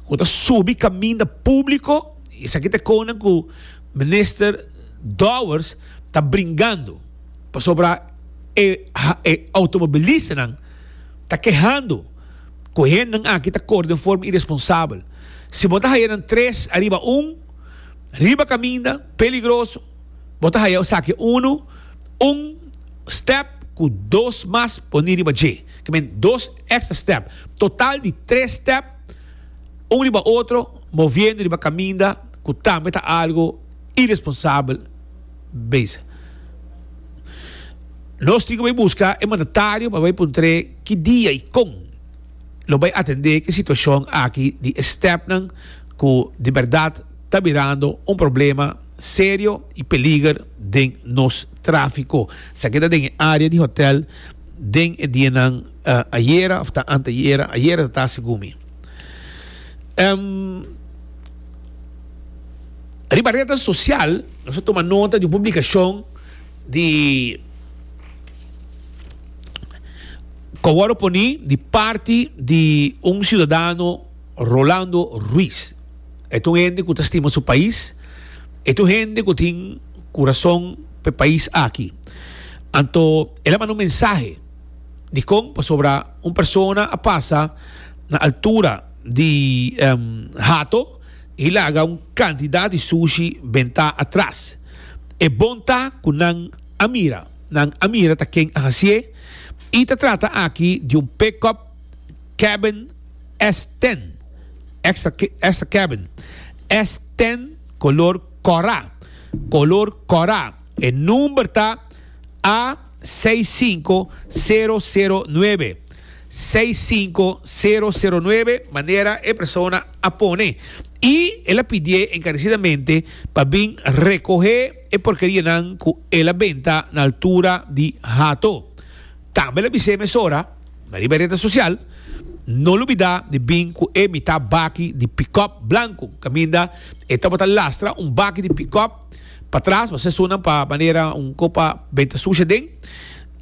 ku ta subi kaminda públiko i esaki ta e kona ku Minister Dowers ta bringando pasobra e e outomobilistanan ta kehando ku hendenan aki ta kor den forma iresponsabel. Si bo ta haya nan tres ariba un riba kaminda peligroso bo ta haya esaki unu un step ku dos mas poní riba dje, ke men dos. Extra step. Total di tres step, un riba otro, moviendo riba caminda cu tambe ta algo irresponsabel bezig. Nos tin cu bay busca e mandatario pa bay puntre ki dia y con lo bay atende ki situacion aki di e stepnan cu di berdad ta birando un problema serio y peliger den nos trafico. Sa ke ta den e area di hotel. Den e dianan ayera of ta anteayera, ayera ta tasi gumi. Riba rednan sosial nos a tuma nota di un publikashon di ku a wòrdu poni di parti di un siudadano Rolando Ruiz. E ta un hende ku ta stima su pais. E ta un hende ku tin kurason pa e pais aki. Anto el a manda un mensahe dikon pasobra un persona a pasa na altura di hato i laga un kantidat di sushi bentá atras. E bon ta ku nan a mira. Nan a mira ta ken a hasié i ta trata aki di un pekòp kèbèn. S ten extra cabin. S ten color cora. Color cora. E number ta a seis cinco cero cero nuebe. Seis cinco cero cero nuebe manera e persona a pone. Y el a pidié encarecidamente pa bin recohe e porkerianan cu el a benta na altura di hato. Tambe el a bis'é mesora. Na riba e rete sosial no lubidá di bin ku e mitá baki di pikòp blanku kaminda e tabata lastra un baki di pikòp patras pa sesunnan pa manera un ko pa bai ta sushi aden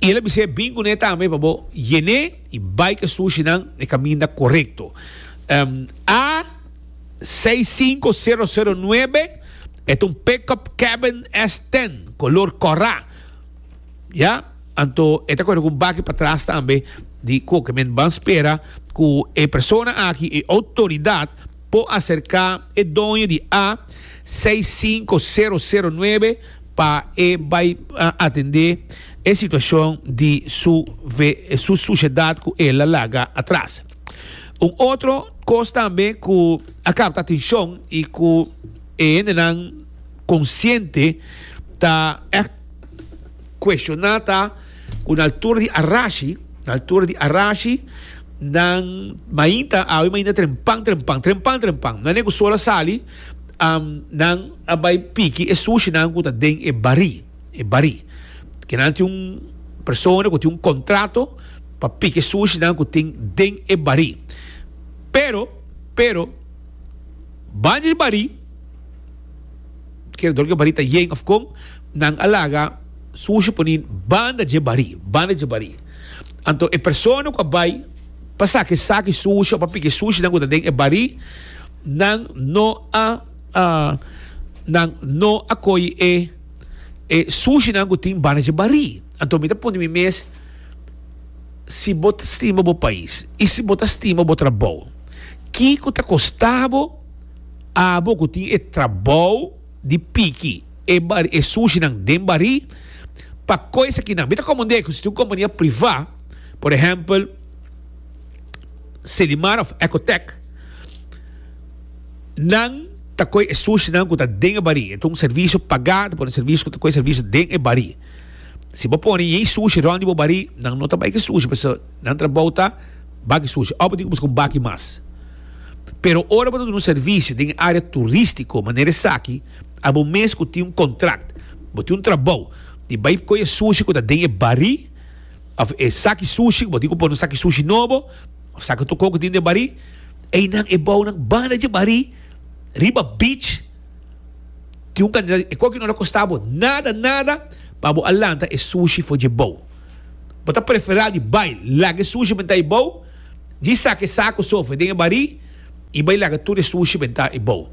i el a bis'é bin ku ne tambe pa bo yen'é i bai ku e sushinan na e kaminda korekto. A seis sinku sero sero nuebe e ta un pikòp Cabin S ten kolor kòrá. Ya, anto e ta kore ku un baki patras tambe di koke. Men ban spera ku e persona aki, e outoridat, por aserká e doño di A seis sinku sero sero nuebe pa e bai atendé e situashon di su su sushedat ku el a laga atras. Un otro kos tambe ku a kapta atenshon i ku e hendenan. konsiente ta ègt kueshoná ta ku na altura di arashi, na altura di arashi, nan mainta, awe mainta trempan, trempan, trempan, trempan. Nan e ku sol a sali, nan a bai piki e sushinan ku ta den e barí, e barí. Ke nan tin un persona ku tin un kontrato pa piki e sushinan ku tin den e barí. Pero, pero, banda di barí. Kerador ke barí ta yen òf kon nan a laga su ushu poni banda dje barí, banda dje barí. Anto e persona ku a bai pa saki saki su ushu òf pa piki su ushunan ku ta den e barí, nan no a nan no a koi e e su ushunan ku tin banda dje barí. Anto mi ta punti mi mes, si bo ta stima bo pais i si bo ta stima bo trabou, kiko ta kostabo? Abo ku tin e trabou di piki e bari e sushinan den bari pa koy esakinan mi ta komond'e ku si tin un kompania privá por ehèmpel Selimar òf Ecotec nan ta koy e sushinan ku ta den e bari e ta un servisio pagá ta por un servisio ku ta koy servisio den e bari si bo pone yei sushi rònt di bo bari nan no ta bai ki sushi paseki nan trabou ta bak sushi òf bo tin ki buska un baki mas. Pero ora bo ta duna un servisio den e área turístiko manera esaki, abo mes ku tin un kontrakt, bo tin un trabou di bai koi e sushi ku ta den e barí òf e saki sushi ku bo tin ku pone un saki sushi nobo òf saki tokó ku tin den e barí. Einan e bounan banda dje barí riba beach tin un kantidat e koki no ta kosta bo nada nada pa bo a lanta e sushi for dje bou. Bo ta preferá di bai laga e sushi banta e bou. Disa ke saku sofri den e barí i bai laga tur e sushi bentá e bou.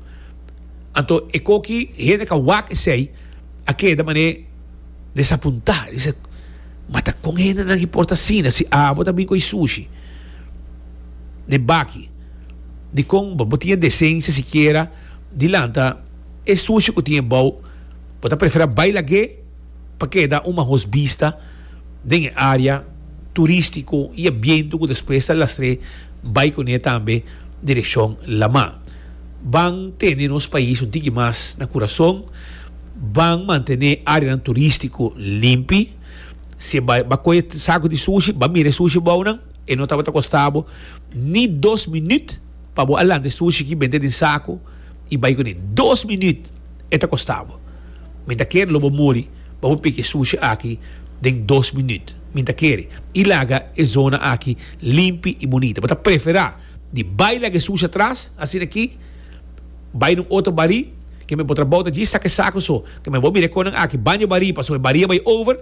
Anto e koki hende ka wak esei a keda manera desapuntá. E bisa, Ma ta kon hendenan ki por ta asina si abo ta bin ku e sushi n'e baki? Dikon bo tin e desensia sikiera di lanta e sushi ku tin e bou? Bo ta prefera bai lag'é? pa keda un mahos bista den e área turístiko i e bientu ku despues ta lastr'é bai kuné tambe direkshon Lamá. Ban tene nos pais un tiki mas na kurason, ban mantené áreanan turístiko limpi. Si e bai ba kohe saku di sushi, ba mira e sushi bou nan, e no tabata kosta bo ni dos minüt pa bo a lanta e sushi ki bende den saku i bai kuné. Dos minüt! E ta kosta bo. Mi ta kere lo bo muri. Bo por piki e sushi aki den dos minüt. Mi ta kere i laga e zona aki limpi i bunita. Bo ta preferá di bai laga e sushi atras, asina ki, bai na un otro barí, kende bo trabou ta djis saka e saku so. Kende bo mira e konan aki baña barí pasobra e barí a bai over.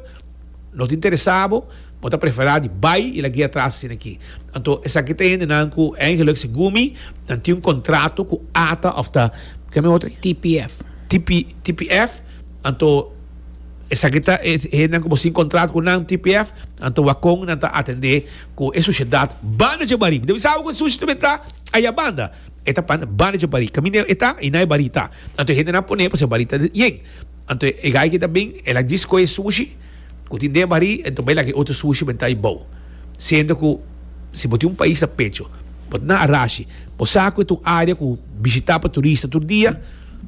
No ta interesá bo, bo ta preferá di bai i la guia tras asina aki. Anto esaki ta hendenan ku eigenlijk segun mi nan tin un kontrato ku ata òf ta, ke mi otro? TPF. TP, TPF, anto esaki ta e hendenan ku bo sin kontrato ku nan, TPF, anto wak kon nan ta atendé ku e sushedat banda djabarí. Mi ta bisa bo ku e sushi tambe ta ayá banda, e ta pan banda djabarí, kaminda e ta i na e barí ta. Anto e hendenan pone pa se barí ta yen. Anto e gai ki ta bin el a djiskohe e sushi ku tin den bari en tombay laga e otro sushi pa entra ibou. Siendo ku si bo tin un pais na pecho, bo ta na arashi, bo sa ku e ta un area ku bishita pa turista tur dia,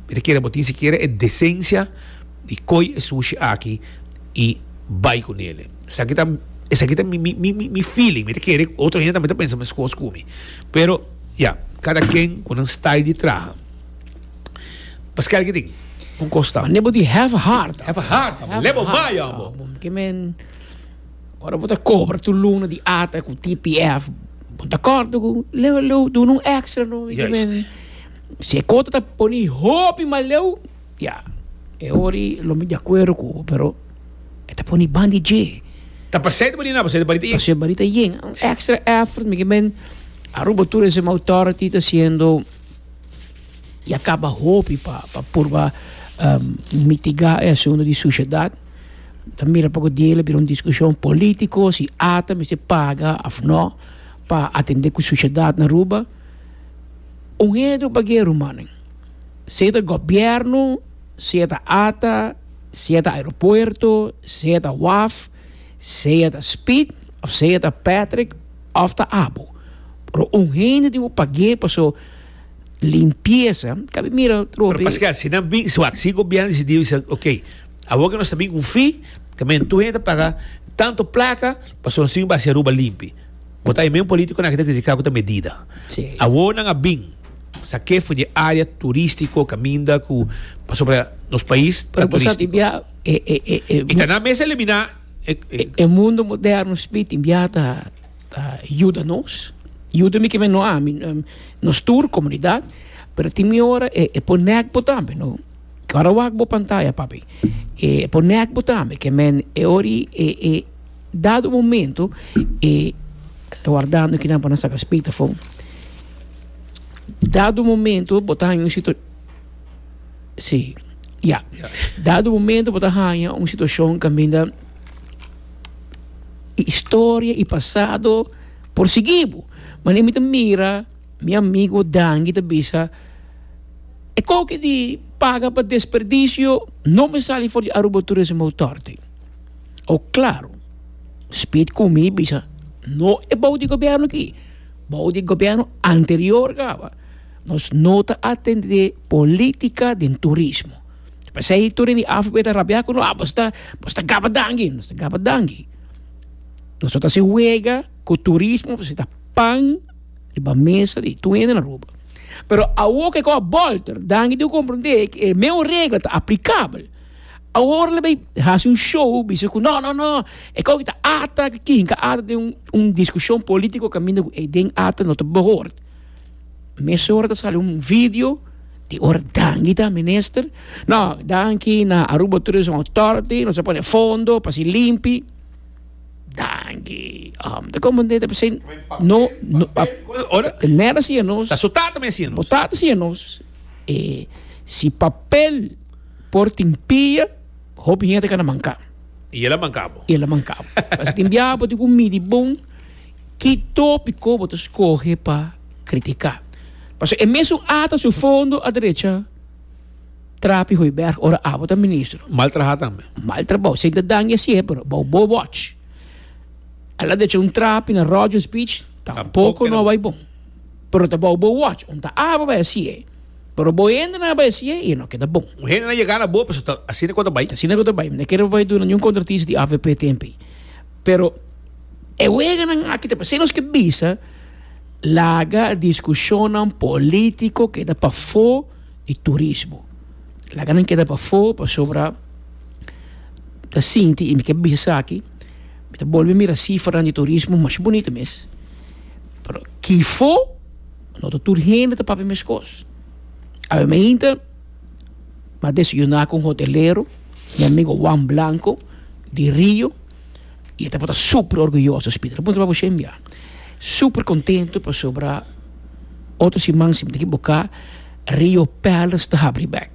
mi ta kere bo tin sikiera e desensia di koy e sushi aki i bai ku nele. Esaki ta esaki ta mi mi mi mi feeling, mi ta kere otro hende tambe ta pensa meskos ku mi. Pero, ya, kada ken ku nan style di traha. Paskal ki tin un kosta. Mane bo di have hard. Have hard, amo. Lebo mai, amo. Ke men, ora bo ta kobra tu luna di ata ku TPF, bo ta korto ku leu, leu, duna un extra no. Ke men, si e kota ta pone hopi mas leu, ya, e hori lo mi di akuerdo ku bo, pero e ta pone ban di dje. Ta pasei ta balina, pasei ta bali ta yen. Pasei bali ta yen. Un extra effort, mi ke men, Aruba Tourism Authority ta siendo. Ya kaba hopi pa purba mitigá e asuntu di sushedat. Ta mira poko diei la bira un diskushon polítiko, si ata mester paga òf nò pa atendé ku sushedat na Aruba. Un hedu pa guei rumannan, sea ta gobièrnu, sea ta ata, sea ta aeropuerto, sea ta waf, sea ta speed, of sea ta Patrick. òf ta abo, pero un hende tin ku pag'é pa su limpiesa ka bin mira tropi. Pero paske asi nan bin, si wak, si gobièrnu disidí bisa ok, awor ku nos ta bin ku un fi, ta men tur hende ta paga tantu plaka pa su nason basi Aruba limpi. Bo ta oye men polítikonan aki ta kritiká ku ta medida. Sí. Awor nan a bin, sa ke for di e área turístiko kaminda ku, pasobra nos pais ta Pero bo sa turístiko. di bia e, e, e, e, I ta nan mester eliminá E mundo moderno spiti bia ta yuda nos, yuda mi kimen no ami, nos tur komunidat, pero tin mi ora e pon nèk bo tambe no, ke ora wak bo pantaya papi e pon nèk bo tambe ke men e ora i e dado momento e ta wardando kinan por nan saka spit afó dado momento bo ta haña un. Sí, ya. Dado momento bo ta haña un situashon kaminda historia i pasado por sigui bo. Mane mi ta mira mi amigo Dangi ta bisa e koki di paga pa desperdisio no mi sali for di Aruba Tourism Authority. Oh claro, Speed ku mi bisa no e bou di gobierno aki, bou di gobierno anterior kawa. Nos no ta atendé política den turismo. P'esei tur den di AFB ta rabiá cu nos, ah, bos ta, bos ta gaba dangi. Nos ta gaba dangi. Nos no ta hasi wega cu turismo pasobra ta pan riba mesa di tur hende na Aruba. Pero awor cu e cosa a bolter, danki tin cu comprendé cu e mesmo regla ta aplicabel. Awor lo bay hasi un show bisa cu no, no, no, e cosa aki ta ata, aki ta ata. Tin un discusion politico caminda cu ey den ata no ta behoort. Mes ora ta sali un video di ora Dangi ta minister. No, danki na Aruba Tourism Authority, nos a pone fondo pa si limpi. Danki. Um, ta como de pa sin no no pa nera si nos. Ta su tata me si nos. Tata si nos. E si papel por tin pia, hopi gente kan a manka. Y el a mankabo. Y el a mankabo. Pas tin biapo tin ku midi bon. Ki topi ko bo ta skohe pa kritiká? Pasobra e mesun ata su fondo aderecha trapi Hoiberg ora abo ta ministro. Mal traha tambe. Mal trabou. Sin ta daña sihe, pero bou bo wòch. Al a derecha un trapi na Rogers Beach, tampoko no a bai bon. Pero ta bou bo wòch. Un ta abo bai a sihe. Pero bo hende nan a bai a sihe i e no keda bon. Un hende nan yega na bo, pasobra ta asina ku ta bai. Ta asina ku ta bai. Mi ta kere pa bai duna niun kontratista di avp temp ei. Pero e weganan aki ta pasobra nos ke bisa laga diskushonnan polítiko keda pafó di turismo. Laga nan keda pafó pasobra mi ta sinti i mi ke bisa esaki, mi ta bolbe mira sifranan di turismo masha bunita mes, pero kifo no ta tur hende ta papia meskos. Awe mainta. pa desayuná ku un hotelero, mi amigo Juan Blanco di Rio, i e tabata super orguyoso, Speed. Lo puntra pa bo shen bia. Super kontentu pasobra otro siman, si mi ta ekiboká, Rio Palace ta habri bèk.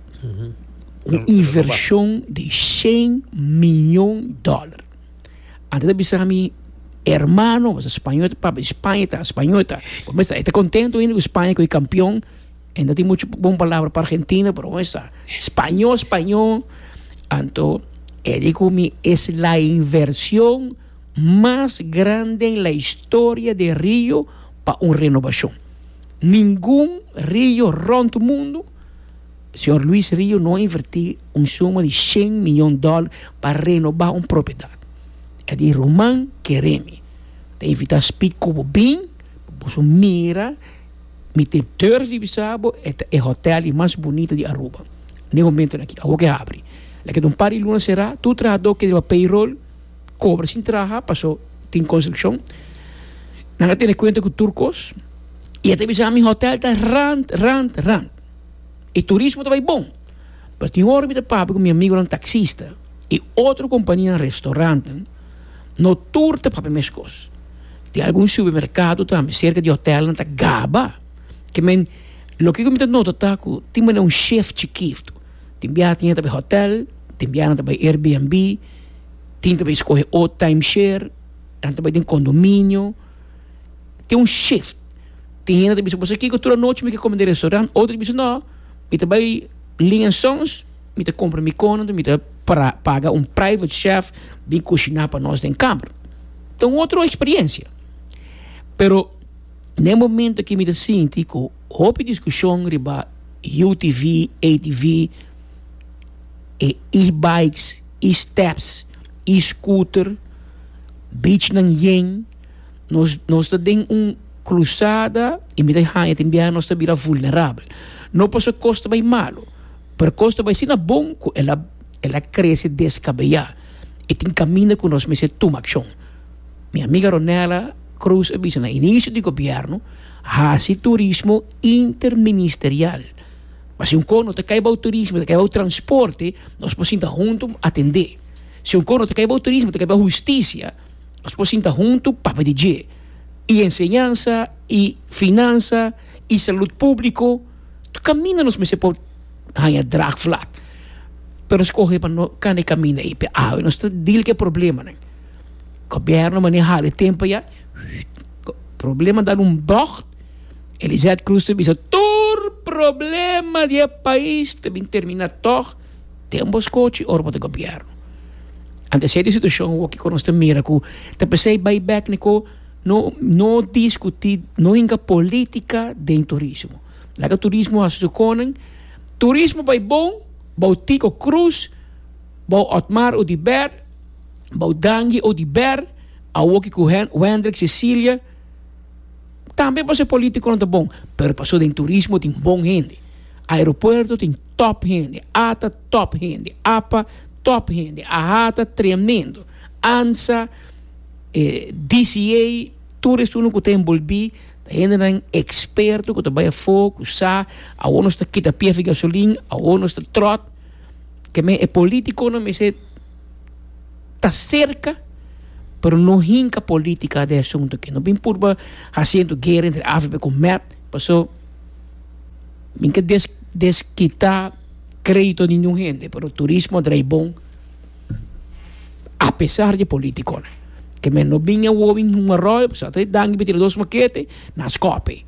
Un invershon di shen mion dòler. Ante ta bisa mi hermano, pasobra spañol, pape di Spaña ta, spañol ta. Por mes ta e ta kontentu ainda ku Spaña, ku e kampion. E no tin mucho bon palabra pa Argentina, pero bon esa. Spañó, spañó. Anto, e di ku mi es la inversion mas grande en la historia de Rio pa un renovashon. Ningun rio rònt mundu, señor Luis Rio no a invertí un suma di shen miyon dòl pa renobá un propiedad. E di ruman, kere mi ta invitá spik ku bo bin pa boso mira. Mi tin dors di bisa bo, e ta e hotel di mas bunita di Aruba den e momentonan aki. Awor ke habri. La keda un par di luna sera. Tur trahador ke riba payroll kobra sin traha paso tin construccion. Nan a tene kuenta ku tur kos. I e ta bisa mi hotel ta rant, rant, rant. E turismo ta bai bon. Pero tin ora mi ta papia ku mi amigonan taksista i otro kompanianan restaurantenan. No tur ta papia meskos. Tin algun supermerkado tambe serka di hotèlnan ta gaba ke men. Loke ku mi ta nota ta ku tin manera un shef chikif tu. Tin biaha tin hende ta bai hotèl, tin biaha nan ta bai RBNB, tin ta bai skohe otro taimsher, nan ta bai den kondominio. Tin un shef. Tin hende ta bisa, Boso kiko tur anochi mi ke kome den restorant? Otro ta bisa, No, mi ta bai Lin en Sons. Mi ta compra mi cono, mi ta paga un private chef bin cushina pa nos den kamer, ta un otro experiencia, pero na e momento aki mi ta sinti cu hopi discusion riba UTV, ATV, e e-bikes, e-steps, e-scooter, beach nan yen, nos nos ta den un cruzada y mi ta haya tin biaha nos ta bira vulnerable, no pasobra cos ta bay malo. Pero kos ta bai asina bon ku el a el a krese deskabeá i tin kaminda ku nos mester tuma akshon. Mi amiga Ronella Cruz a bisa, Na inisio di gobièrnu hasi turismo interministerial. Pa si un kos no ta kai bou turismo, ta kai bou transporte, nos por sinta huntu atendé. Si un kos no ta kai bou turismo, ta kai bou hustisia, nos por sinta huntu papia di dje. I enseñansa i finansa i salud públiko. Ta caminda nos mester por haña draagvlak, pero nos coge pa no cana e caminda ei, p'e awe nos ta deal cu e problemanan. Gobierno mane hala e tempo ya, problema dal un bocht, Elizet Cruz ta bisa tur problema di e pais ta bin termina tog, den bo scochi ora bo ta gobierno. Ante esey ta e situacion awor kico nos ta mira cu ta pesey bay bek n'e co. No no diskutí, no hinka polítika den turismo. Laga turismo hasi su konan. Turismo bai bon, bou tiko krus, bou Otmar Oduber, bou Dangie Oduber, awoki ku Hendrik Cecilia. Tambe pa se polítikonan ta bon, pero paso den turismo tin bon hende. Aeropuerto tin tòp hende, ata tòp hende, apa tòp hende, ahata tremendo, ansa. E DCA, tur estunan ku ta enbolbí ta hendenan eksperto ku ta bai afó, ku sa awor nos ta kita pies di gasolin, awor nos ta tròt. Ke men e polítikonan mester ta serka, pero no hinka polítika den e asuntu akí. No bin purba hasi anto guera entre avp ku mep. Paso, mi ke des des kita krédito di ningún hende, pero turismo a drai bon. A pesar di e politiconan ke men no bin awor bin Hoon Arroyo paso ata e danki bitido dos makete na scope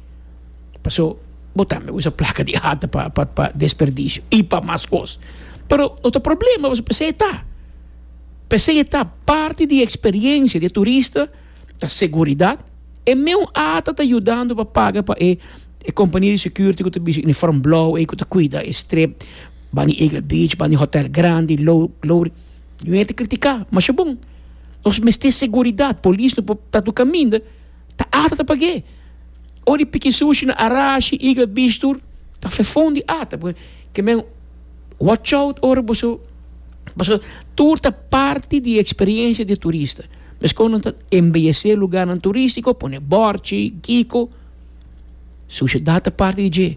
paso bo tambe usa placa di ata pa pa pa desperdicio y pa mas cos pero no ta problema paso p'esey e ta p'esey e ta parti di experiencia di e turista ta seguridad e meu ata ta yudando pa paga pa e compania di security ku ta bish'Uniform Blauw ey ku ta cuida e strip. Ban di Eagle Beach, ban di hotel grandi, low, low. Yu hende kritika, masha bon. Nos mester seguridat, polis no por ta tur kaminda, ta ata ta pag'é. Ora di piki sushi na Arashi, Eagle Beach tur, ta fefon di ata. Pasobra ke men watch out ora bo su, pasobra tur ta parti di e eksperensia di e turista. Mes kon nan ta embeyesé lugarnan turistiko, pone bòrchi, kiko. Sociedad ta parti di dje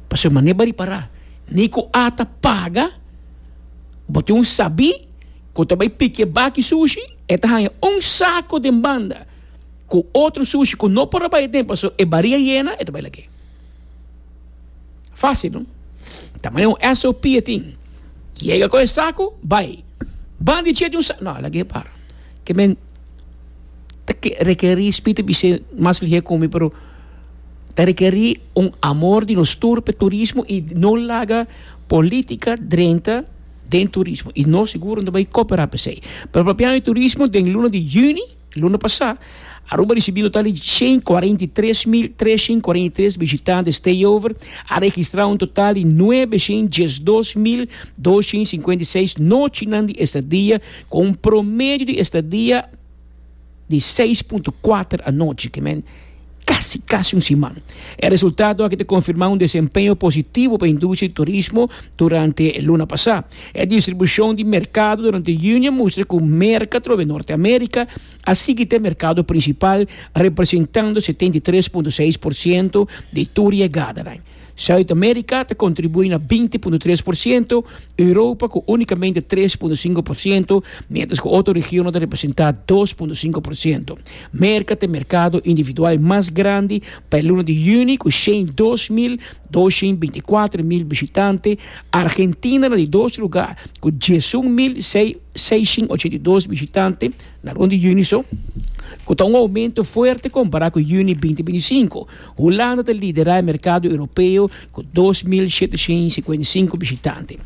pasobra manera bo repará ni cu a ta paga bo tin un sabí cu ta bay pikié baki sushi e ta haña un saco den banda cu otro sushi cu no por a bay aden pasobra e bariga yena e ta bay lagué. Fácil no ta manera un SOP e tin yega cu e saco bay banda di dje tin un saco no a lagué para ke men. ta rekerí spiritu bisé mas lihé ku mi, pero ta rekerí un amor di nos tur pa turismo i no laga polítika drenta den turismo i no sigur no ta bai koperá pa esei. Pero propianan di turismo den luna di yüni, luna pasá, Aruba a risibí un total di shen kuarenta i tres mil treshent kuarenta i tres bishitante stayover, a registrá un total di nuebe shent dies dos mil doshent sinkuenta i seis nochinan di estadia ku un promedio di estadia, di seis punto kuater anochi, ke men kasi kasi un siman. E resultado aki ta konfirmá un desempeño positivo pa industria di turismo durante e luna pasá. E distribushon di merkado durante yuni a mustra ku Merka trobe Norte Amérika a sigui ta e merkado prinsipal, representando setenta i tres punto seis por siento di tur yegadanan. South America ta contribui na binti punto tres por ciento, Europa cu unicamente tres punto cinco por ciento, mientras cu otro regionnan ta representa dos punto cinco por ciento. Merca ta e mercado individual mas grandi pa e luna di juni cu shen dos mil doshen binti cuatro mil bishitante, Argentina na di dos lugar cu diesun mil seishen ochenta i dos bishitante na luna di juni so, cu ta un aumento fuerte compara cu juni binti binti cinco. Hulanda ta lidera e merkado Europeo ku dos mil shetesin i sikuenta i sinku bishitante.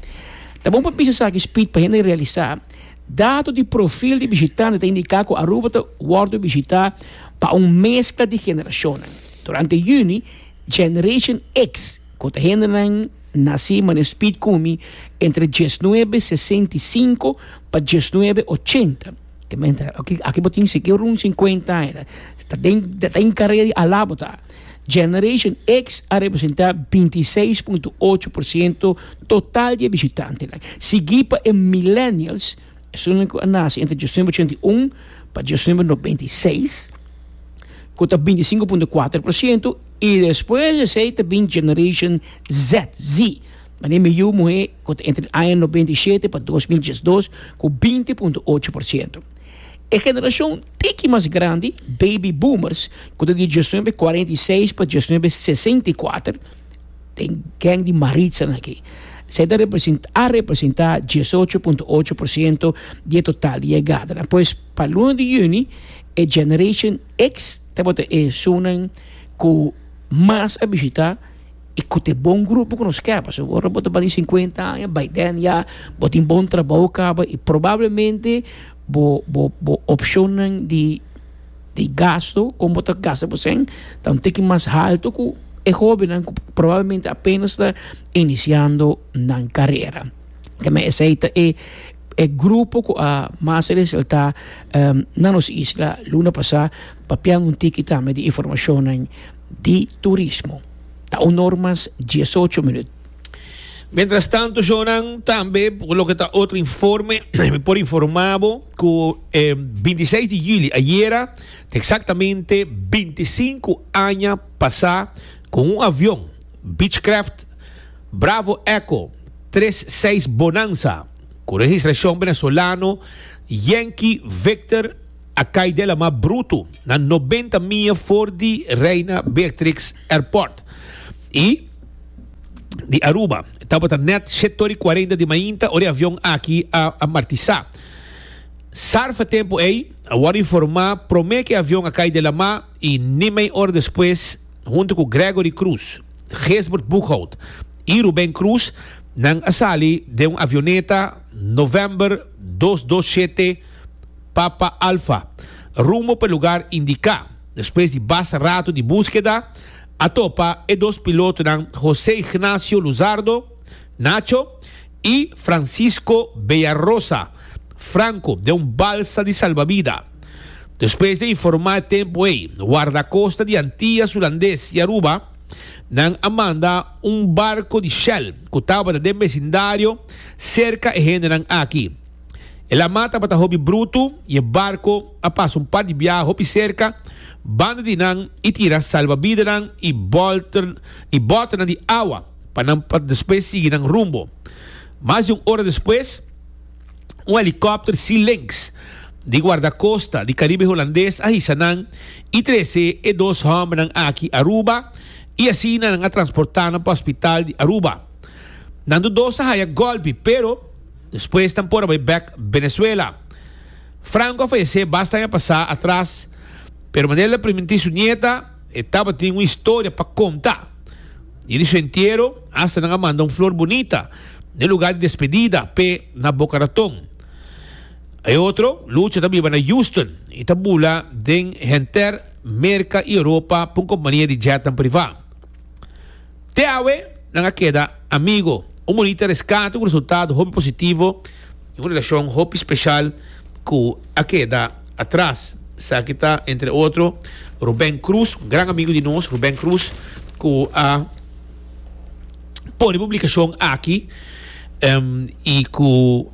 Ta bon pa bisa esaki spit pa hende realisá dato di profil di bishitante ta indiká ku Aruba ta wòrdu bishitá pa un meskla di generashonnan. Durante yüni, Generation X, ku ta hendenan nasí manera spit kumi entre diesnuebe sesenta i sinku pa diesnuebe ochenta, Aki bo tin siki run sinkuenta aña, ta den ta den karea di alá bo ta. Generation X a representá binti i seis punto ocho por siento total di e bishitantenan, sigui pa e Millennials, esunnan ku a nase entre diosember ochenta i un pa diosember nobenta i seis, ku ta binti i sinku punto kuater por siento, i despues di esei ta bin Generation Z, Z. Manera e miyu muhé ku ta entre e aña nobenta i shete pa dos mil diesdos ku binti punto ocho por siento. E generashon tiki mas grandi, baby boomers, ku ta di diesnuebe kuarenta i seis pa diesnuebe sesenta i kuater, den geng di maritsanan aki, esei ta representá a representá diesocho punto ocho por siento di e total di e edanan. Pues pa luna di yüni e Generation X tabata esunnan ku mas a bishitá. y cu t'e bon grupo cu nos keb, pasobra ora bo ta bali cincuenta aña bay den ya bo tin bon trabou caba y probablemente bo bo bo opcionnan di di gasto con bo ta gasta bo cen ta un tiki mas halto cu e hobennan cu probablemente apenas ta iniciando nan carera ta me esey ta e e grupo cu a mas resalta na nos isla luna pasa papia un tiki tambe di informacionnan. di turismo ta un or mas diesocho minut. Mientras tanto Jonan tambe por loke ta otro informe mi por informa bo cu e binti seis di juli ayera ta exactamente binti sinku aña pasa cu un avion Beechcraft Bravo Echo tres seis Bonanza cu registracion Venezolano Yankee Victor a cay de la mar Bruto na noventa mia for di Reina Beatrix Airport y di Aruba. Tabata net shetor y cuarenta di mainta ora e avion aki a amartisa. Sarfa tempo ey a worde informa prome cu e avion a cay de la mar y ni mei ora despues hunto cu Gregory Cruz, Geesbert Boekhoudt y Ruben Cruz nan a sali den un avioneta November dos dos shete. Papa Alfa, rumbo pa e lugar indiká. Despues di basta ratu di búskeda, a topa e dos pilotonan José Ignacio Luzardo, Nacho, i Francisco Beyarosa, Franco, den un balsa di salbavida. Despues di a informá e tempu ei Wardakosta di Antias Hulandes i Aruba, nan a manda un barko di Shell ku tabata den besindario serka e hendenan aki. E la mar tabata hopi brutu y e barco a pasa un par di biaha hopi cerca banda di nan y tira salvabidanan y bolter y botenan di awa pa nan pa despues sigui nan rumbo. Mas di un ora despues un helicopter Sea Lynx di guardacosta di Caribe Holandes a hisa nan y trece e dos hombernan aki Aruba y asina nan a transporta nan pa hospital di Aruba. Nan do dos a haya golpi pero. Despues nan por a bai bek Benezuela. Franco a fayesé basta aña pasá atras, pero manera el a primintí su nieta, e tabatin un historia pa conta. Dia di su entiero, asta nan a manda un flor bunita na e lugar di despedida p'e na Boca Raton. E otro, Lucha, ta biba na Houston i ta bula den henter Merca i Europa p'un compania di jetnan privá. Te awe nan a keda amigo. Un bonita reskate ku resultado hopi positivo i un relashon hopi speshal ku a keda atras. Esaki ta entre otro Ruben Cruz, un gran amigo di nos, Ruben Cruz ku a pone e publikashon aki i ku.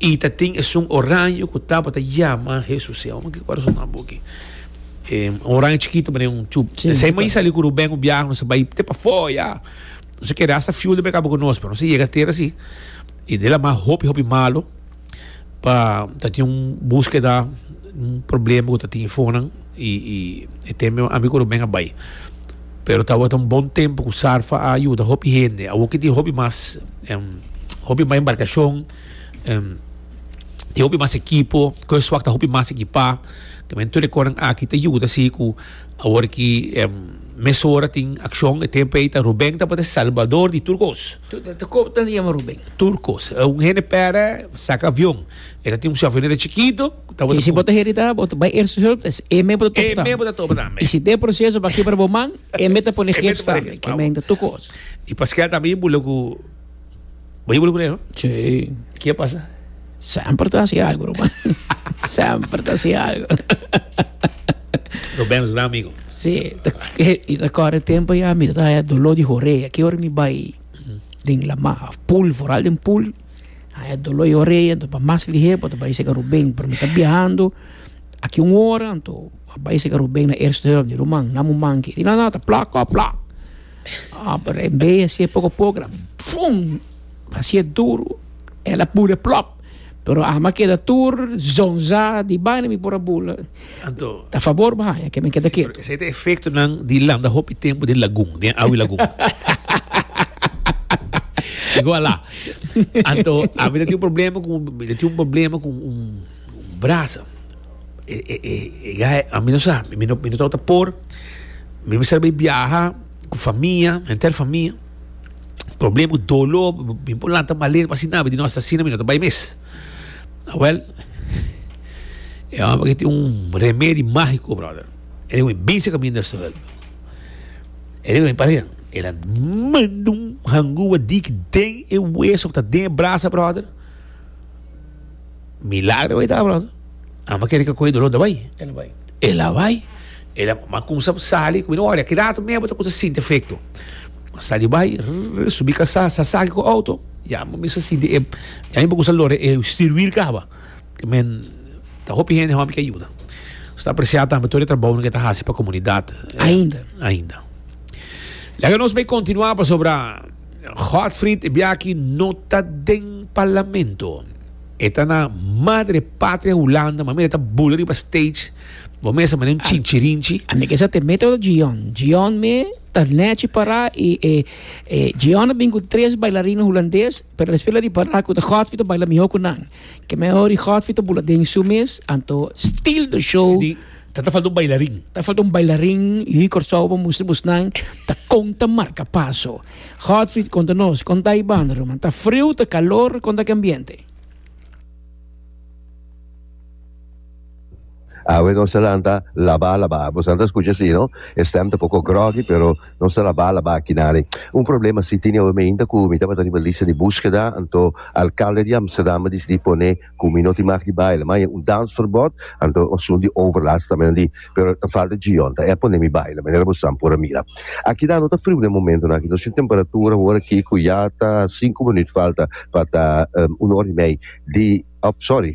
I ta tin esun oraño ku tabata yama Hesus. E omi kiko a resolve nan buki. E un oraño chikito manera un chup. Si. Esei mei sali ku Ruben un biaha, nos a bai te pafoya. Nos a keda asta fiul den mekaba ku nos, pero nos a yega tera si. I del a mas hopi, hopi malu, pa ta tin un buskeda, un problema ku ta tin ifonan. I i e tempo mi ami ku Ruben a bai. Pero tabata un bon tempo ku Sarfa a yuda hopi hende. Awor ke tin hopi mas hopi mas embarkashon, tin hopi mas ekipo, kos wak ta hopi mas ekipá. Tambe tur e kosnan aki ta yuda si ku awor ki mesora tin akshon. E tempo ei ta Ruben tabata e salbador di tur kos. Ta kos ta yama Ruben? Tur kos. Un hende pèrdè, saka avion. E ta tin un shòfèr neto chikitu. Y si bo ta herida, bo ta bai Eerste Hulp, es e me bo ta topnan. E me bo ta topnan, men. Y si den e proceso bo a kibra bo man, e me ta pone gips tambe, ke men ta tucu otro. Y paskei ata bo bula cu, bo bula cu ne, no? Sí. Y ke a pasa? Semper ta haci algo, ruman. Semper ta haci algo. Rubén es gran amigo. Sí, ta, y ta corre tempo ya, mi ta taya dolor di horea. Ke ora mi bai den Lama, of pool, vooral den pool. Ah, e dolor e oreia, anto pa mas liher, pa ta bai seca Rubén, pero mi ta biahando, aki un hora, anto a bai seca Rubén na eerste hulp di ruman, na mu manki. Di na nada, plak, kòp, plak. Ah, pero e mei a siye poco a poco, keda fum! A siye duru, el a bule plòp! Pero ama keda tur zonza di baina mi por a bula. Anto. Ta fabor bo haña ke men keda ketu. Si, pero esei ta efektonan di landa hopi tempu den lagun, den awa di lagun. Si ku ala. Anto, ami ta tin un problema ku, mi ta tin un problema ku un brasa. E, e, e, e gai, ami no sa, mi no, mi no tau ta por. Mi mester bai biaha ku famia, henter famia. Problema ku dolo, mi por lanta maler pa asina, mi di no, si ta asina mi no ta bai mes. Awel, e homber aki tin un remedi magico, brother. E den wen bisa caminda e suel. E den wen pare, el a manda un hangua dik den e wees of ta den e brasa, brother. Milagro awey ta, brother. Amba kere ka koe dolor ta bai? El a bai. El a bai. El a ma kumsa sali ku mi ora ki rato mea bo ta kumsa sinti efekto. A sali bai, rrr, subi kasá, sa saki ku outo, ya mi mester sinti e, ya mi por kumsa lora e stirwil kaba. Men, ta hopi hende hòmber ke yuda. Nos ta apresiá tambe tur e trabounan ke ta hasi pa komunidat. Ainda. Ainda. Laga nos bai kontinuá pasobra Godfrid e biaha aki no ta den parlamento. E ta na Madre Patria Hulanda, manera e ta bula riba stage, bo mester mane un chinchirinchi. A mi kesa te mete ora Djian. Djian mi ta nechi para i e e Djian a bin ku tres bailarina hulandes, pero despues la ripara ku ta Godfrey ta baila mihó ku nan. Ke mi a hori Godfrey ta bula den su mes, anto stil do show, Di ta ta falta un bailarin. ta falta un bailarin, yu di Kòrsou a por mustra bosnan ta kon ta marka paso. Godfrid konta nos kon ta e banda, ruman. Ta friu, ta kalor, kon ta ke ambiente? Awe nos ta lanta labá labá. Bosan ta skucha si no? E stèm ta poko groggy pero nos ta labá labá aki nali. Un problema si tene awe mainta ku mi tabata riba lista di buskeda, anto alkalde di Amsterdam a disidí pone Cu mi no tin mag di baila. Ma aye un dansverbod, anto asun di overlast ta menan di, pero ta falta Gion, ta e pone mi baila, manera bo san por a mira. Aki ta no ta friu den momentonan aki, nos tin temperatura awor aki cu ya ta sinku minuut falta pa ta un ora y mei di, of sorry,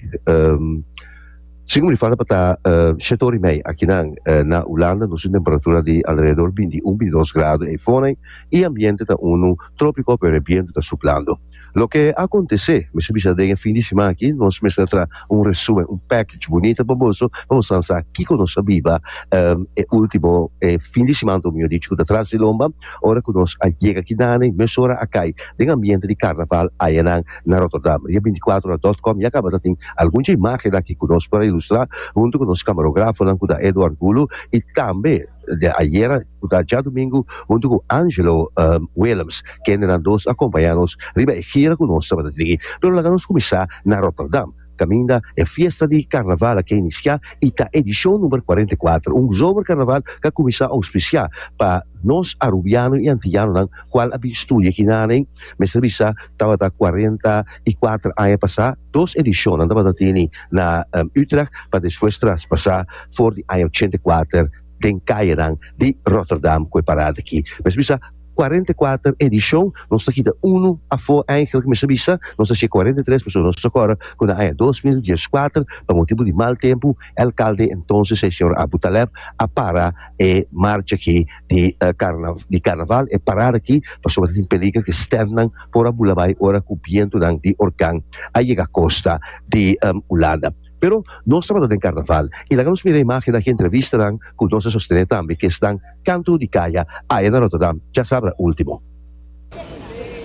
sinku minuut falta pa ta shete ora y mei akinan. Na Hulanda nos tin temperatura di alrededor binti un, binti dos grado e fonan y ambiente ta unu tropico pero e biento ta suplando. Loke a kontesé? Mi su bisa den e fin di siman aki nos mester traha un resumen, un package bunita pa boso pa boso a sa kiko nos a biba e último fin di siman ta mior dichi ku ta tras di lomba ora ku nos a yega aki nan i mesora a kai den ambiente di karnaval ayanan na Rotterdam. Ria binticuatrohora dòt kòm ya kaba ta tin algun dje imágennan aki ku nos por a ilustrá huntu ku nos kamarografonan ku ta Edward Gulu i tambe de ayera cu ta djadomingo hunto cu Angelo Willems, kende nan dos a compaña nos riba e gira cu nos tabata tin. Pero laga nos cuminsa na Rotterdam, caminda e fiesta di Carnaval a ke inicia y ta edicion number cuarenta y cuatro, un zomercarnaval cu a cuminsa auspicia pa nos Arubiano y Antillanonan cual a bin studia aki na nen, mester bisa tabata cuarenta y cuatro aña pasa. Dos edishonnan tabata tene na Utrecht pa despues traspasá for di aña ochenta i kuater den kayenan di Rotterdam ku e parada aki. Mester bisa, kuarenta i kuater edishon, nos ta kita unu afó eigenlijk, mester bisa, nos ta hash'é kuarenta i tres pasobra nos ta rekorda ku na aña dos mil dies kuater pa motibu di mal tempu, e alkalde entonces, e señor Abu Taleb, a para e marcha aki. di karna di karnaval e parada aki pasobra ta tin peliger ku e stèntnan por a bula bai ora ku bientunan di orkan a yega kosta di Hulanda. Pero nos tabata den karnaval i laga nos mira imágen aki entrevistanan ku nos a sostené tambe ku esnan kantu di kaya aya na Ròterdam djasabra último.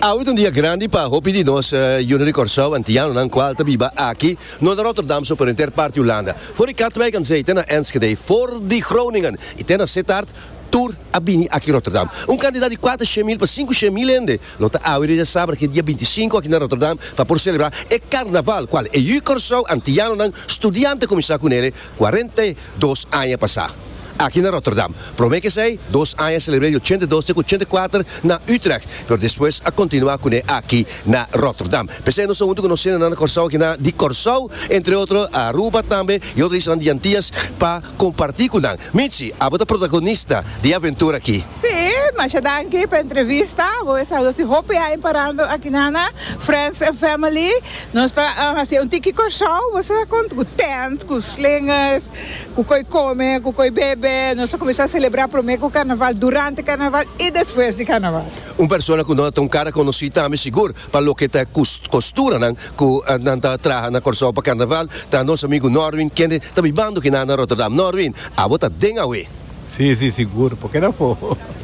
Awe ta un dia grandi pa hopi di nos Uno di Kòrsou antianonan kual ta biba aki no na Rotterdam so por enter parti Hulanda, for di Katwijk an zey te na Enschede, for di Groningen i te na Sittard, tur a bini aki Rotterdam. Un kantidat di kuater shemil pa sinku shemil hende lo ta awe desha sabra ke dia binti sinku aki na Rotterdam pa por selebrá e karnaval kual e Ui Kòrsou antianonan studiante kuminsá ku nele Cuarenta i dos aña pasá, aki na Rotterdam, promé ke esei dos aña selebr'é di ochenta i dos te ku ochenta i kuater na Utrecht, pero despues a kontinuá kuné aki na Rotterdam. P'esei nos ta huntu ku nos sendenan na Kòrsou aki nan di Kòrsou, entre otro Aruba tambe i otro islanan di Antillas pa kompartí ku nan. Mitchie, abo ta protagonista di e aventura aki. Sí, masha danki pa entrevista. Bo e saluda si hopi aña parando aki nana, friends and family. Nos ta hacié un tiki Corsou, bo sa con cu tent, cu slingers, cu coi come, cu coi bebe. Nos ta cuminsa celebra prome cu Carnaval, durante Carnaval y despues di Carnaval. Un persona cu no ta un cara conoci tambe sigur pa loke ta e costuranan cu nan ta traha na Corsou pa Carnaval ta nos amigo Norwin kende ta bibando aki nana Rotterdam. Norwin, abo ta den awe. Sí, sí, sigur. Poke ta for?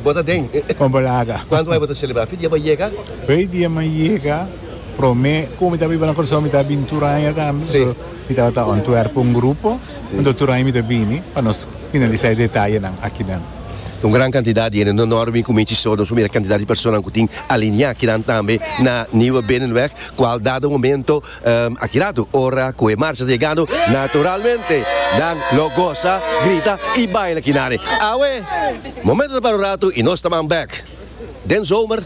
Bo ta den? Con bo laga. Cuantu bay bo ta celebra fe dia bay yega? Fe dia mi yega, prome, como mi ta biba na Curaçao mi ta bini tur aña tambe. Sí. So, mi tabata Antwerp pa un grupo. Sí. Enton tur aña mi ta bini pa nos finalisa e detayenan akinan. Ta un gran cantidad di hende. No no a reuní cu Michi so. Nos por mira e cantidad di personanan cu tin alinea kinan tambe na Nieuwe Binnenweg, cual dado momento, Aki ratu ora cu e marcha ta yegando, naturalmente nan lo goza, grita y baila kinari. Awe, momento ta para un ratu y nos ta man bek. Den zomer,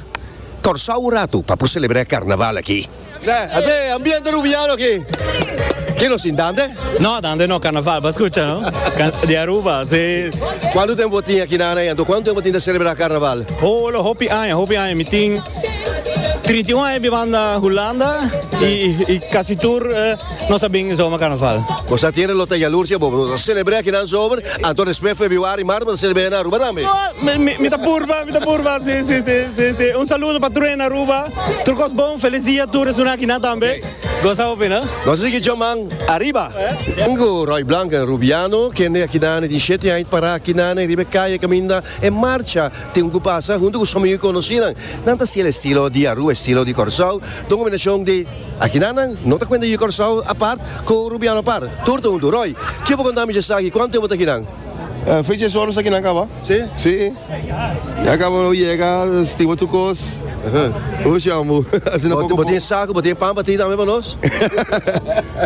Corsow un ratu pa por celebra e carnaval aki. Sè, a ta e ambiente Rubiano aki. Ken lo sin Dante? No, Dante no. Carnaval pa scucha, no? Di Aruba, si. Cuantu tempo bo tin aki, Nana, y anto cuantu tempo tin ta celebra carnaval? Oh, lo hopi aña, hopi aña mi tin. Trinta i un aña bibanda Hulanda y casi tur nos a bin Zomer Carnaval. Nos a tira lo ta yalurcia bobo. Nos a celebra akinan zomer, anto despues febiuari, marzo nos a celebra na Aruba tambe. Mi ta purba, mi ta purba, si, si, si, si, si. Un saludo pa tur hende Aruba. Tur cos bon, felis dia tur esuna akinan tambe. Goza hopi, no? Nos a sigui djaman ariba. Tin cu Roy Blanken Rubiano, kende akinan e tin shete aña it para akinan riba e caye caminda e marcha. tin ku pasa huntu ku someñu i konosinan. Nan ta siel estilo di Aruba, estilo di Kòrsou, ta un kombinashon di akinanan no ta kuenta yu Kòrsou apart ku Rubiano apart. Tur ta huntu. Roy, ke bo konta mishi esaki? Kuantu tempu bo ta akinan? Fecha e solo esaki nan kaba. Si? Si. Ya kaba bo yega, stima tur kos. Bo shon bo. Asina poko poko. Bo tin saku, bo tin pan pa tin tambe pa nos?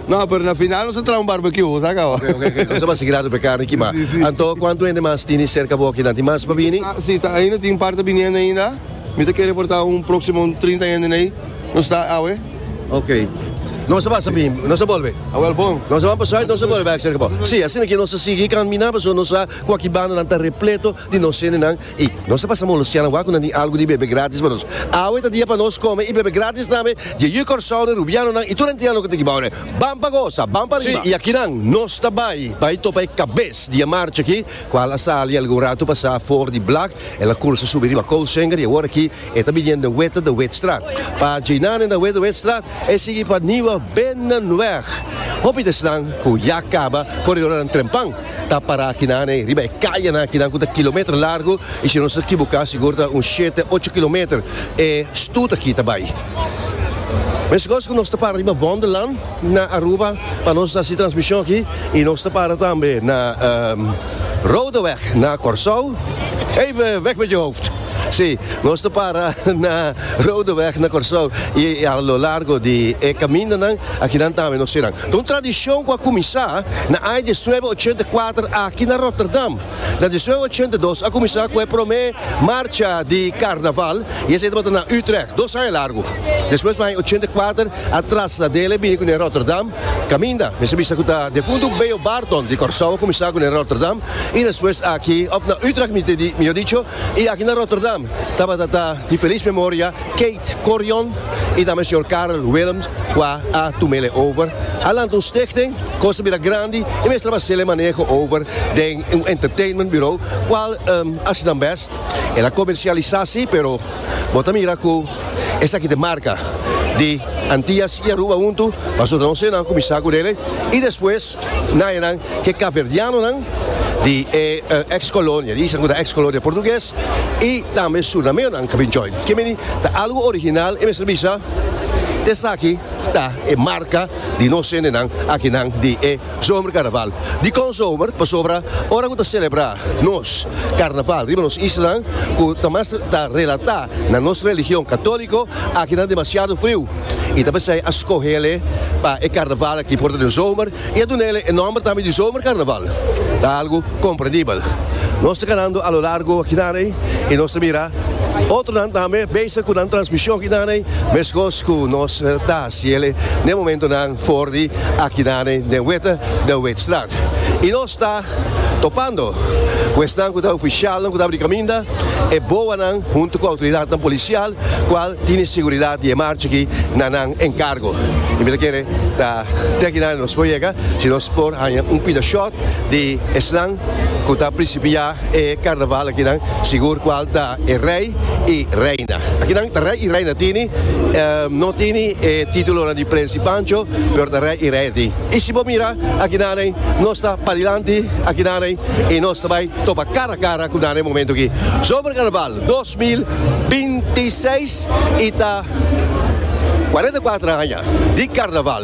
No, pero na final nos ta traha un barbecue, bo sa caba. Oke, oke, oke. Nos ta basa si grado p'e carni kimaa. Sí, sí. Anto, cuantu hende mas tini cerca bo aki nan? Tin mas pa bini? Sí, ta ainda tin un par ta biniendo ainda. Mi ta kere por ta un proximo un trinta henden ei. Nos ta awe. Oke. Nos a basa bini, nos a bolbe. A wel bon. Nos a ban pa Zuid, nos a bolbe bak cerca bo. Sí, asina ke nos a sigui camina pasobra nos sa cu aki bandanan ta repleto di nos hendenan I nos a pasa molosia nan wak ku nan tin algu di bebe gratis pa nos. Awe ta dia pa nos kome i bebe gratis tambe, dje yu Kòrsounen, Rubianonan i tur hentianan ku ta ekibou ne. Ban pa gosa! Ban pa riba! Si, i akinan nos ta bai, bai topa e kabes di e marcha aki, kual a sali algun ratu pasá for di Blak, el a kursa subi riba Koussenger i awor aki e ta biniendo den Weta de Witstraat. Pa djina nen na Wet de Witstraat, e sigui pa Nieuwe Binnenweg. Hopi desnan ku ya kaba for di ora nan trempan. Ta pará akinan ey, riba e kayanan akinan ku ta kilometer largu i si no ta kibuká sigur ta un shete, ocho kilometer e stut aki ta bai. Mescos ku nos ta para riba Wonderland na Aruba pa nos hasi transmishon aki i nos ta para tambe na Rodeweg na Kòrsou, Even weg met je hoofd! Si, nos ta para na Rodeweg na Kòrsou i a lo largo di e kamindanan akinan tambe nos sera. Ta un tradishon ku a kuminsá na aña dies nuebe ochenta i kuater aki na Rotterdam. Na dies nuebe ochenta i dos a kuminsá ku e promé marcha di karnaval i esei tabata na Utrecht, dos aña largu. Despues pa aña ochenta i kuater a traslad'é el a bini ku ne Rotterdam. Kaminda, mester bisa ku ta defuntu Beo Barton di Kòrsou a kuminsá ku ne Rotterdam i despues aki òf na Utrecht mihor dicho. I aki na Rotterdam tabata ta di felis memoria Keith Corion i tambe señor Karel Willems ku a a tumele over. A lanta un stichting, kos a bira grandi i mester a basele maneho over den un entertainment bureau, kual a hasi nan bèst. El a komersialisá sí, pero bo ta mira ku. Esaki ta e marka di Antias i Aruba huntu, pasobra ta un señor kuminsá ku dele i despues na enan ke kapverdianonan di e eks kolonia, di esnan ku ta eks kolonia portuges i tambe surnameonan a bin join. Ke meni ta algu original e mester bisa, esaki ta e marka di nos hendenan akinan di e. Zomercarnaval. Dikon zomer? Pasobra ora ku ta selebrá nos karnaval riba nos islanan ku ta mas ta relatá na nos religion katóliko, akinan demasiado friu i ta p'esei a skohel'e pa e karnaval aki por ta den zomer i a duna'e e nòmber tambe di zomercarnaval. Ta algu komprendibel. Nos ta kanando a lo largo akinan'ei i nos ta mira otronan tambe bezig ku nan transmishon akinan'ei, meskos ku nos ta hasiel'e n'e momentonan for di akinane den Weta de Weetstraat y nos ta topando cu esnan cu ta oficialnan cu ta abri caminda e boanan hunto cu autoridadnan policial cual tine seguridad di e marcha aki na nan encargo y mi ta kere ta te akinane nos por yega si nos por haña un pida short di esnan. cu ta principia e carnaval akinan sigur cual ta e rey y reina. Akinan ta rey y reina tini, no tini e titulonan di prins y pancho, pero ta rey y reina tin. Y si bo mira akinanen nos ta padilanti akinanen y nos ta bay topa cara a cara cu nan e momento aki. Zomercarnaval dos mil binti seis y ta cuarenta y cuatro aña di carnaval.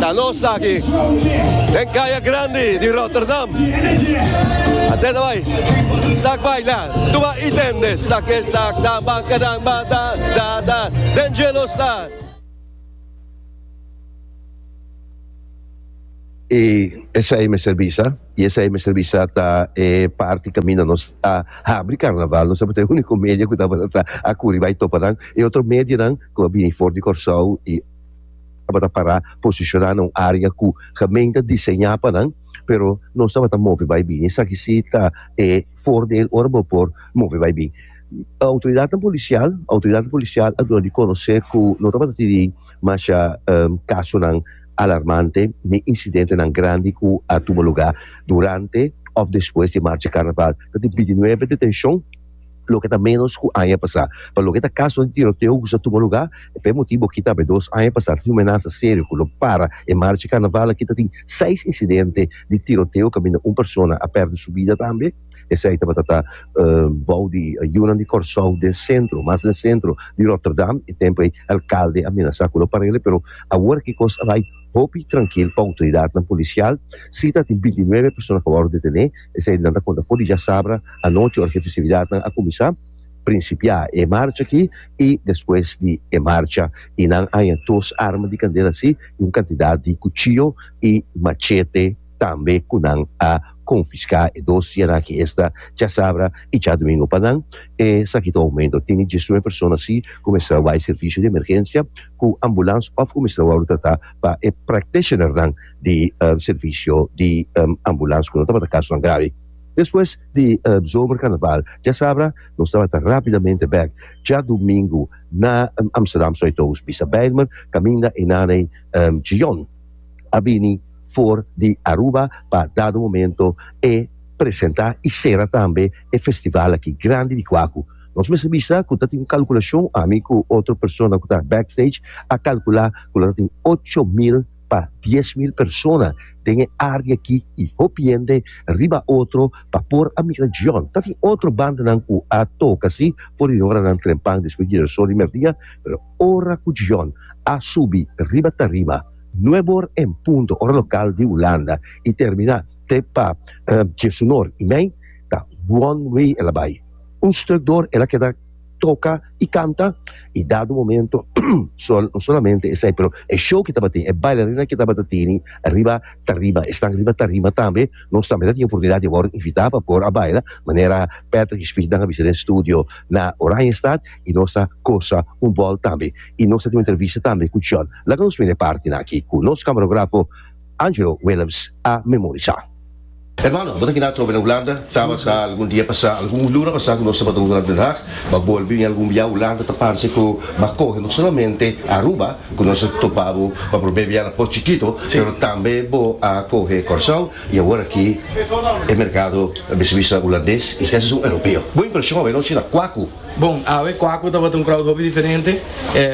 Ta nos aki den kaya grandi di Rotterdam. Atenta bai. Sak baila, tuba i tende. Sak ke sak, dan ban ka dan ba da da da. Den jelo sta. I esei mester bisa. I esei mester bisa ta e parti kaminda nos a habri karnaval. Nos tabata e úniko media ku tabata ta a kuri bai topa nan. E otro medianan ku a bini for di Kòrsou i tabata pará posishoná na un área ku gemeente a diseñá pa nan, pero nos tabata move bai bini. Esaki si ta e fordel ora bo por move bai bin. Outoridatnan polisial, outoridatnan polisial a duna di konosé ku no tabata tiri masha kasonan. alarmante ni incidentenan grandi cu a tuma lugar durante of despues di Marcha Carnaval. Ta tin bintinuebe detencion, loke ta menos cu aña pasa. Pa loke ta casonan di tiroteo cu sa tuma lugar, e p'e motibo aki ta haber dos aña pasa ta tin un menaza serio cu lo para e Marcha Carnaval aki ta tin seis incidente di tiroteo caminda un persona a perde su bida tambe. Esei tabata ta bou di yunan di Kòrsou den sentro, mas den sentro di Ròterdam. E tempu ei alkalde a menasá ku lo parele, pero awor aki kos a bai hopi trankil pa outoridatnan polisial. Sí ta tin binti nuebe persona ku a wòrdu detené. Esei nan ta konta for di djasabra anochi ora ku e festividatnan a kuminsá prinsipiá e marcha aki i despues di e marcha i nan haña dos arma di kandela así i un kantidat di kuchiyo i machete. tambe cu nan a confisca e dos sierra ki esta Chasabra y Chadomingo pa nan, esaki ta aumento, tin diesnueve persona así cu mester a wai servicio di emergencia cu ambulance of cu mester a worde trata pa e practitioner nan di servicio di ambulance cu no tabata casonan gravi. Despues di zomer carnaval Chasabra nos tabata rapidamente bek Chadomingo na Amsterdam Zuidoost bisa Bijlmer caminda Hernaney Gion. a bini for di Aruba pa dado momento e presenta y cera tambe e festival aki grandi di Cuacu. Nos mester bisa cu ta tin un calculacion, ami cu otro persona cu ta backstage a calcula cu lo ta tin ocho mil pa dies mil persona den e area aki y hopi hende riba otro pa por a mira Djon. Ta tin otro bandanan cu a toca si for di oranan trempan despues di Girasol y merdia pero. Ora ku John a subi riba tarima nuebe or en punto, ora lokal di Hulanda, i terminá te pa Jesunor i mei, ta one way el a bai. Un stuk dor el a keda toka i kanta, i dado momento no solamente esei pero e show ku tabatin, e bailarinan ku tabata tini riba tarima, esnan riba tarima tambe, nos tambe ta tin oportunidat di a wòrdu invitá pa por a baila, manera Patrick i Speed nan a bisa den studio na Oranjestad. y nos ta cosa un bol tambe y nos ta tin un entrevista tambe cu John. Laga nos mira e partenan aki cu nos camarografo Angelo Willems a memorisa. Hermano, bo ta kina atrobe na Hulanda? Sabas ha algun dia pasa, algun luna pasa cu nos tabata un horas Den Haag, bo a bolbe bini algun bia Hulanda ta parse cu bo a coge no solamente Aruba cu nos a topa bo pa probé bia na Port Chikito pero tambe bo a coge Corsow y awor aki e mercado a bisa bisa Hulandes y si kasa esun Europeo. Bo impresion awe nochi na Kwaku. Bon, awe Kwaku tabata un crowd hopi diferente,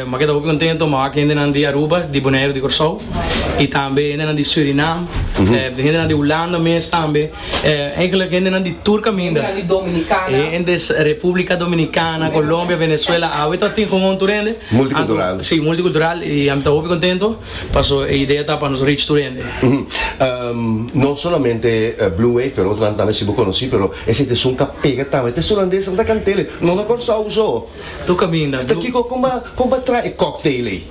m'a keda hopi contento m'a wak hendenan di Aruba, di Bonaire, di Curaçao y tambe hendenan di Surinam, hendenan di Hulanda mes tambe, eigenlijk hendenan di tur caminda, hendes Republica Dominicana, Colombia, Venezuela, awe ta tin hoon tur hende, si, multicultural y ami ta hopi contento paso e idea ta pa nos reach tur hende. No solamente Blue Wave pero otro nan tambe si bo conoci pero. E sitieson ka pega tamba. E ta suna des anta kantel ei. No na Kòrsou so. To kaminda. Ta kiko kon ba kon ba traha e cocktail ei.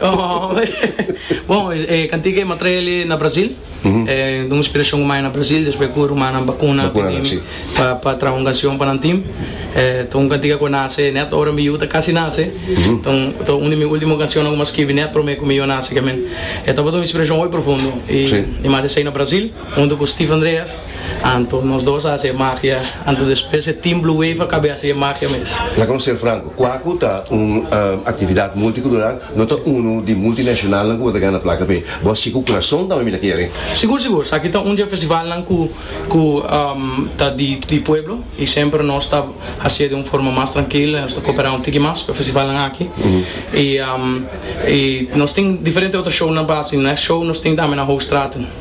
Bon e kantika ei mi a traha el na Brazil. E duna inspirashon ku mi a haña na Brazil despues ku rumannan bakuna tinimi pa pa traha un kanshon pa nan tim. E ta un kantika ku a nase nèt ora mi yu ta kasi nase. Ta un ta un di mi ultimo kanshonnan ku mi a skibi nèt promé ku mi yu a nase kiamen. E tabata un inspirashon hopi profundo i mi haña esei na Brazil. Huntu ku Steve Andreas, Anto, nos dos a hasi e magia, anto despues e Team Blue Wave a kab'e hasi e magia mes. Laga nos ser franko, Kwaku ta un aktividat multikultural, no ta unu di multinashonalnan ku bo ta gana plaka p'ei. Bo hasi ku kurason tambe mi ta kere. Sigur sigur, esaki ta un di e festivalnan ku ku ta di di pueblo i semper nos ta hasi'e di un forma mas trankil i nos ta koperá un tiki mas ku e festivalnan aki. I nos tin diferente otro shownan pa hasi. Next show nos tin tambe na Hoogstraten.